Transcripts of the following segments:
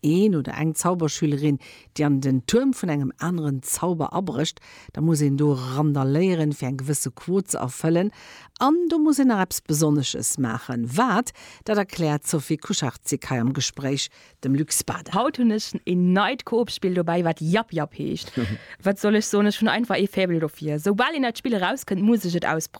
een oder eng Zauberschülerin, déi an den Tuerm vun engem aneren Zauber abrécht, da muss een do randaléieren, fir eng gewësse Quot ze erfëllen. An do muss een nach eppes Besonnesches maachen. Wat, dat erkläert d'Sophie Kucharczyk hei am Gespréich dem Luc Spada. Haut hunn ech een neit Coop-Spill dobäi, wat Jap-Jap heescht. Wat soll ech soen, ech hunn einfach ee Faible dofir. Soubal een dat Spill erauskënnt, muss ech et ausprobieren.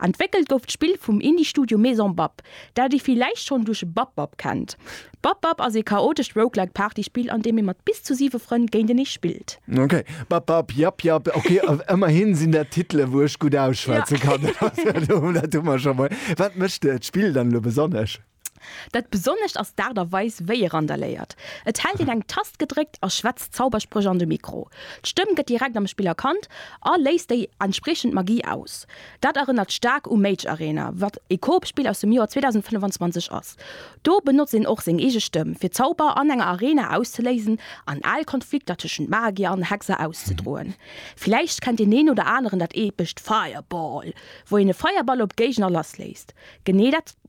Entwéckelt gouf d'Spill vum Indie-Studio Maison Bab, dat ee villäicht schonn duerch Bab Bab kennt. Bab Bab ass ee chaotescht Roguelike Partyspill, an deem ee mat bis zu siwe Frënn géintenee spillt. Ok, Bab Bab, Jap Jap, ok, ëmmerhi sinn dat Titele wou ech gutt ausschwätze kann, dat hu mer scho mol. Wat mécht d'Spill dann elo besonnesch? Dat Besonnescht ass d'Aart a Weis, wéi e randaléiert. Et hält een eng Tast gedréckt a schwätzt Zauberspréch an de Mikro. D'Stëmm gëtt direkt am Spill erkannt a léist déi entspriechend Magie aus. Dat erënnert staark u Mage Arena, wat e Coop-Spill aus dem Joer 2025 ass. Do benotzt een och seng eege Stëmm, fir Zauber an enger Arena auszeléisen an al Konflikter tëschent Magier an Hexer auszedroen. Villäicht kennt deen een oder aneren dat epescht Fireball, wou een e Feierball op Géigner lassléisst. Genee dat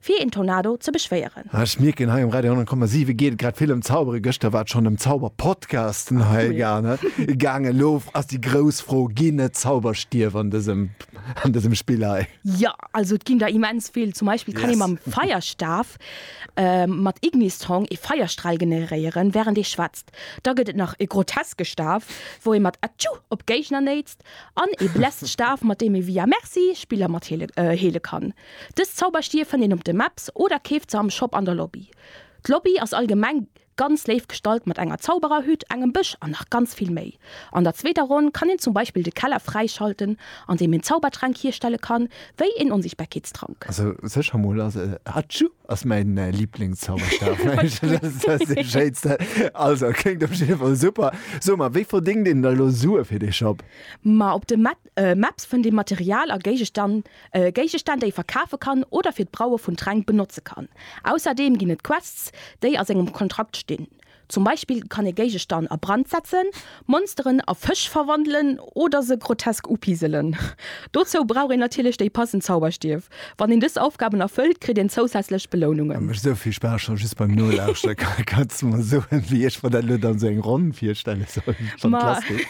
Fir een Tornado ze beschwéieren. Ah ech mierken hei um Radio 100,7 geet et grad vill ëm Zaubere. Gëschter war et schonn ëm Zauberpodcasten hei gaangen. Elo ass déi grouss Fro, ginn et Zauberstierf an dësem an dësem Spill hei? Jo, also et ginn der immens vill. Zum Beispill kann ee mam Feierstaf mat Ignistrong ee Feierstral generéieren wärend ee schwätzt. Da gëtt et nach e groteske Staf wou ee mat Atschuu op Géigner néitst an ee Bläststaf mat deem ee via Merci Spiller mat heele heele kann. Dës Zauberstier fënnt een op de Maps oder keeft se am Shop an der Lobby. D'Lobby ass allgemeng ganz léif gestalt mat enger Zaubererhütt, engem Bësch an nach ganz vill méi. An der zweeter Ronn kann een zum Beispill de Keller fräischalten an deem een Zaubertränk hierstelle kann, wéi een Onsichtbarkeetstrank. Also sécher mol ass e Hatschu ass mäin Liblingszauberstaf. Also kléngt op jidde Fall super. So, ma wéi verdéngt een da lo Sue fir dee Shop? Ma op de Mepps fënnt ee Material a Géigestann, Géigestänn, déi ee verkafe kann oder fir d'Braue vun Tränk benotze kann. Ausserdeem ginn et Quests, déi a sengem Kontrakt stinn. Zum Beispill kann ee Géigestann a Brand setzen, Monsteren a Fësch verwandelen oder se grotesk upiselen. Dozou brauch een natierlech déi passend Zauberstief. Wann een dës Aufgaben erfëllt, kritt een zousätzlech Belounungen. Mécht esou vill Spaass schonn just beim Nolauschteren. Kanns de mer soen wéi ech mer dat elo dann esou eng Ronn virstelle soll? Fantastesch.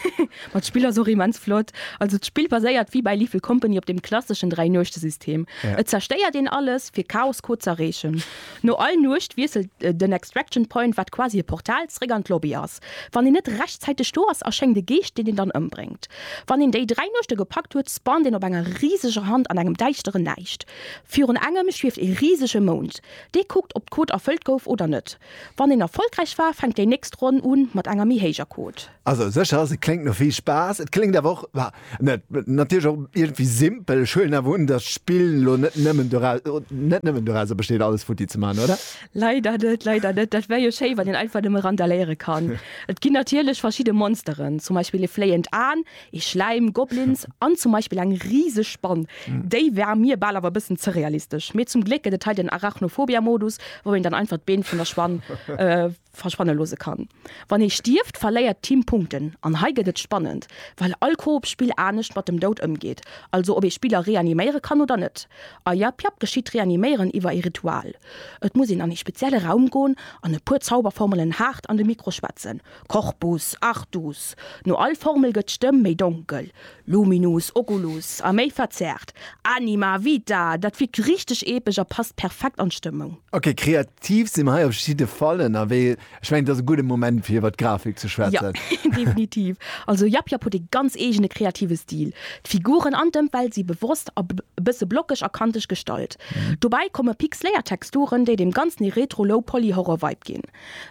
Ma d'Spill ass och immens flott. Also d'Spill baséiert wéi bäi Lethal Company op dem klasseschen Dräi-Nuechte-System. Et zerstéiert een alles fir Chaos-Code z'erreechen. No all Nuecht wiesselt den Extraction Point, wat quasi e Portal, zeréck an d'Lobby ass. Wann een net rechtzäiteg do ass, erschéngt e Geescht, deen een dann ëmbréngt. Wann een déi dräi Nuechte gepackt huet, spawnt een op enger riseger Hand an engem däischtere Näischt. Virun engem schwieft ee risege Mound. Dee kuckt, ob d'Code erfëllt gouf oder net. Wann een erfollegräich war, fänkt déi nächst Ronn un mat enger méi héijer Code. Also sécher ass et kléngt no vill Spaass, et kléngt awer och, bah, net, natierlech och iergendwéi simpel. Ech huelen awer un, datt d'Spill elo net nëmmen dorau, net nëmmen dorauser besteet alles futti ze maachen, oder? Leider net, leider net. Dat wär jo schéi, wann een einfach nëmme randaléiere kann. Et ginn natierlech verschidde Monsteren, zum Beispill ee fléiend Aen, ee Schläim, Goblins an zum Beispill eng riseg Spann. Déi war mir bal awer e bëssen ze realistesch. Mee zum Gléck gëtt et hei den Arachnophobia-Modus, wou een dann einfach d'Been vun der Spann verschwanne loosse kann. Wann ee stierft, verléiert d'Team Punkten, an hei gëtt et spannend, well all Koop-Spill anescht mat dem Doud ëmgeet, also ob ee Spiller reaniméiere kann oder net. A Yap Yap geschitt d'Reaniméieren iwwer ee Ritual, et muss een an ee spezielle Raum goen an e puer Zauberformelen haart an de Mikro schwätzen, Corpus, Artus, no all Formel gëtt d'Stëmm méi donkel, Luminus, Oculus, a méi verzerrt, Anima, Vita, dat wirkt richteg epesch a passt perfekt an d'Stëmmung. Ok, kreat Tief si mer hei op jidde Fall ënnerwee. Ech mengen, et ass e gudde Moment, fir iwwer d'Grafik ze schwätzen. Jo, definitiv. Also Yap Yap huet ee ganz eegene kreative Stil. D'Figuren an d'Ëmwelt si bewosst a bësse blockeg a kanteg gestallt. Dobäi komme pixeléiert Texturen, déi deem Ganzen ee Retro-Low-Poly-Horror-Vibe ginn.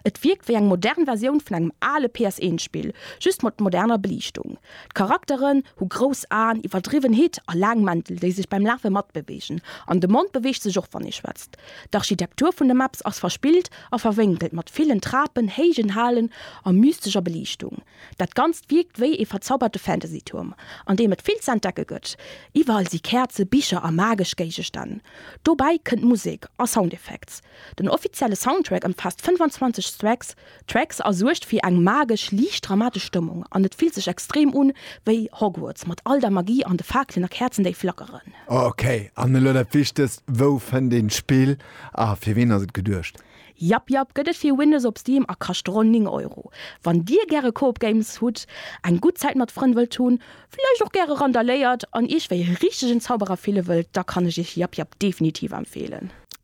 Et wierkt wéi eng modern Versioun vun engem ale PS-1-Spill, just mat moderner Beliichtung. D'Charakteren hu grouss Aen, iwwerdriwwen Hitt a laang Mäntel, déi sech beim Lafe matbeweegen. An de Mond beweegt sech och, wann ee schwätzt. D'Architektur vun de Maps ass verspillt a verwénkelt, mat villen Trapen, héijen Halen a mystescher Beliichtung. Dat Ganzt wierkt wéi ee verzauberte Fantasy-Tuerm, an deem et vill z'entdecke gëtt. Iwwerall si Käerze, Bicher a magesch Géigestänn. Dobäi kënnt Musek a Soundeffekts. Den offizielle Soundtrack ëmfaasst 25 Stracks, D'Tracks a suergt fir eng magesch, liicht dramatesch Stëmmung an et fillt sech extrem un wéi Hogwarts mat all der Magie an de Faakelen a Käerzen déi flackeren. Ok, an elo dat Wichtegst, wou fënnt een d'Spill a fir ween ass et geduecht? Jap jap, gëtt et fir Windows op Steam a kascht ronn 9 Euro. Wann dir gäre Coop Games hutt, eng gutt Zäit mat Frënn wëllt hunn, vläicht och gäre randaléiert an iech wéi e richtegen Zauberer fille wëllt, da kann ech iech Jap Jap definitiv empfeelen.